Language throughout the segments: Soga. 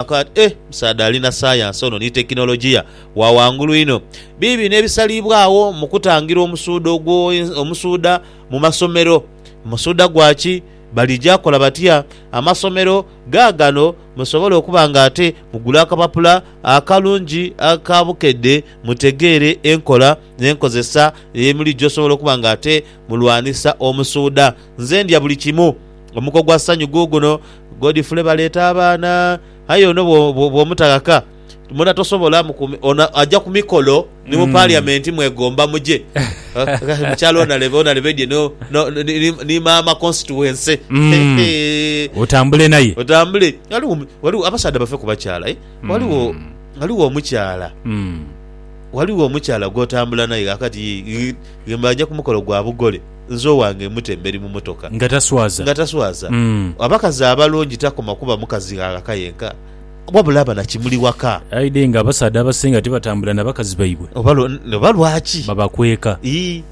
Akaaba ati, Eh, musaadha ali na sayansi ono ni tekinologiya wa ghangulu inho! Biibino ebisaliibwagho mu kutangira omusuudha ogwo, omusuudha mu masomero. Musuudha gwa ki? Balija kola batya? Amasomero gaagano, musobole okuba nga ate mugula akapapula akalungi aka bukedde mutegeere enkola n'enkozesa emulijo osobola okuba nga ate mulwanisa omusuudha. Nze ndya buli kimu. Omuka ogwa sanyu guuguno, Godfrey baleeta abaana. Aye ono bw'omutaghaka, mbona tosobola. Ono aja ku mikolo ni mu Paliamenti mwegomba muje. Mukyala onalebe, onalebe dye ni maama konsituwense. Otambule naye. Otambule. Ghaligho abasaadha bave ku bakyala aye. Ghaligho, ghaligho omukyala, ghaligho omukyala gw'otambula naye ghakati, ghemba aja ku mukolo gwa bugole. Nze owange mute emberi mu motoka. Nga taswaza. Nga taswaza. Abakazi abalungi takoma kuba mukazi ghaka yenka, wabula aba na kimuli waka. Aidhe nga abasaadha abasinga tibatambula na bakazi baibwe. Oba lwaki? Babakweka. Ii.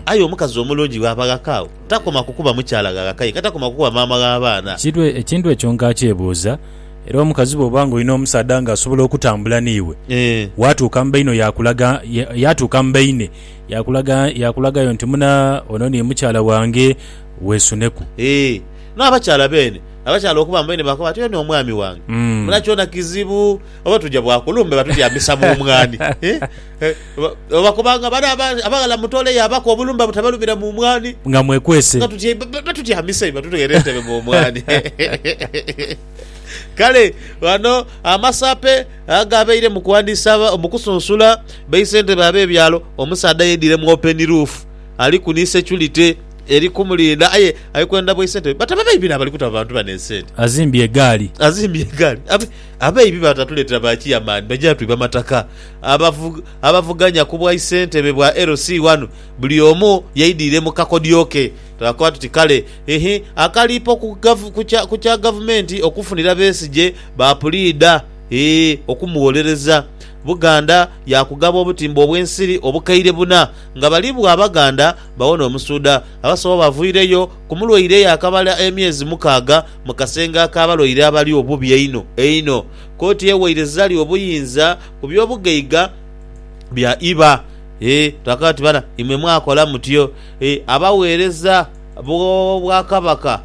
Aye omukazi omulungi bw'aba ghaka agho, takoma ku kuba mukyala gha ghaka yenka, takoma ku kuba maama gh'abaana. Ekintu ekyo nkakyebuuza. Era omukazi bw'oba nga olina omusaadha nga asobola okutambula n'iwe, waatuuka mu baine oyo akulaga, yaatuuka mu baine. Yaakulagayo nti, Muna, ono ni mukyala wange, weesuneku. Ee, n'abakyala beene, abakyala okuba mbaine baakoba bati, Oyo ni omwami wange. Muna kyona kizibu oba tuja bwakulumbe batutyamisa mu mwaani. Oba bakobanga bale abaghala mutooleyo abako obulumbe butabalumira mu mwaani. Nga mwekwese. Batutyamisa eyo batutwere entebe mu mwaani. Kale ghano amasaape. Agho abaire mu kuwandiisa mu kusunsula baisentebe ab'ebyalo, omusaadha yeidhire mu openi ruufu ali ku ni securite eri kumulinda aye ali kwenda baisentebe bataba baibi n'abali kuta bantu bano esente. Azimbye egaali. Azimbye egaali. Abaibi batatuleetera ba Chairman baja twiba mataka. Abavuganya ku bwaisentebe bwa LC ghano buli omu yeidhire mu kakodyo ke. Twakoba tuti kale, hhii, akaliipo ku kya Gavumenti okufunira Besigye, Baapuliida, ee, okumugholereza. Buganda yaakugaba obutimba obw'ensiri obukaire buna, nga bali bwo Abaganda bawo n'omusuudha. Abasawo bavwireyo ku mulwaire eyakamala emyezi mukaaga mu kasenge ak'abalwaire abali obubi einho einho. Kooti ewaire Zari obuyinza ku by'obugaiga bya iba. Ee, twakaba tuti bana imwe mwakola mutyo, ee, abagheereza. bw'Obwakabaka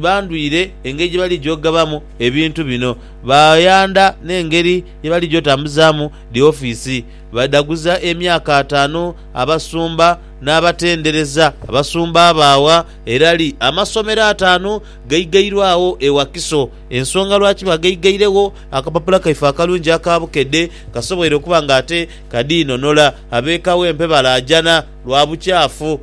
bandwire engeri gye baligya okugabamu ebintu bino. Baayandha n'engeri ye baligya otambuzaamu dhi ofiisi. Baidhaguza emyaka ataanu abasumba n'abatendereza. Abasumba baagha erali amasomero ataanu gaigairwe agho e Wakiso. Ensonga lwaki baagaigairewho, akapapula kaife akalungi aka bukedhe kasoboire okuba ng'ate kadiinonola. Ab'eka w'empe balaajana lwa bukyafu.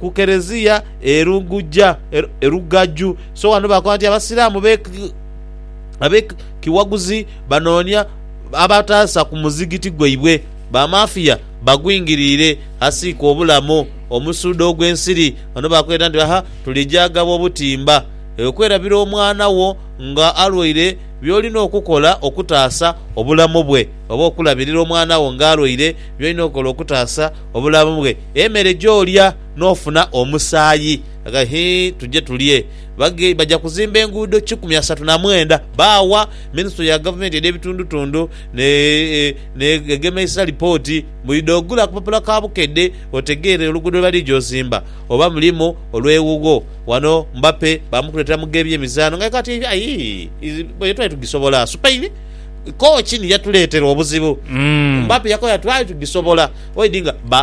ku Kereziya e Lugujja, e Lugaju. So ghano bakoba nti Abasiraamu abe kiwaguzi banoonia abataasa ku muzigiti gwaibwe, ba mafiya bagwingiriire asiika obulamu omusuudo ogw'ensiri. Ghano bakweta nti aha tulija agaba obutimba. Okwerabira omwana wo nga alwaire by'olina okukola okutaasa obulamu bwe, oba okulabirira omwana wo nga alwaire by'olina okukola okutaasa obulamu bwe. Emere gy'olya n'ofuna omusaayi. Aga hii tuje tulye. Bage baja kuzimba enguudo kikumi asatu na mwenda baawa Minisitule ya Gavumenti edh'Ebitundutundu ne n'Egemeisa lipooti. Mbu idha ogula akapapula ka bukedde otegeere oluguudo lwe balidha ozimba oba mulimu olw'ewuwo. Wano Mbappe baamukuleetera mu gh'ebyemizaano ng'aye kati ayii twali tugisobola. Spain kooci ni yatuleetera obuzibu. Mbappe yakoya twali tugisobola. Oidhi nga ba.